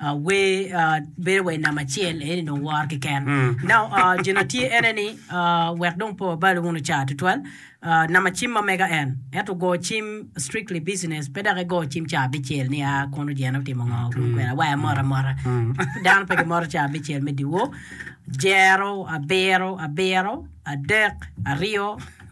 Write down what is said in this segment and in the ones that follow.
Wer bedo wer namba acel eni dong wor keken. Now, uh, jino tye ene ni uh, wek dong po balo wunu car tutwal. Uh, namba cim ma mega en. Ento go cim strictly business. Pe dok go cim car bicel ni a ah, kono jene otimo ngo kun kwena waya mora mora. Dano pe gimoro car bicel me diwo. Jero, abiro, abiro, adek, aryo,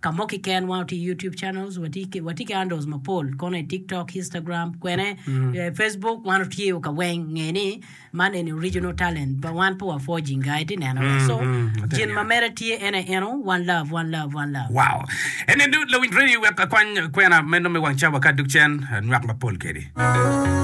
Ka mo kiken wan watye ki YouTube channels, watye ki watye ki handles mapol kono i TikTok, Instagram, kwene, eh, Facebook wan otye ka weng nge ni man eni original talent but wan pe wa forging ga iti neno ga. So mm, ati gin ma neno. mere tye en aye eno one love, one love, one love. Wow! Ene du lawiny radio wek akwany kwena meno me wang cawa ka duk cen, anywak mapol kedi.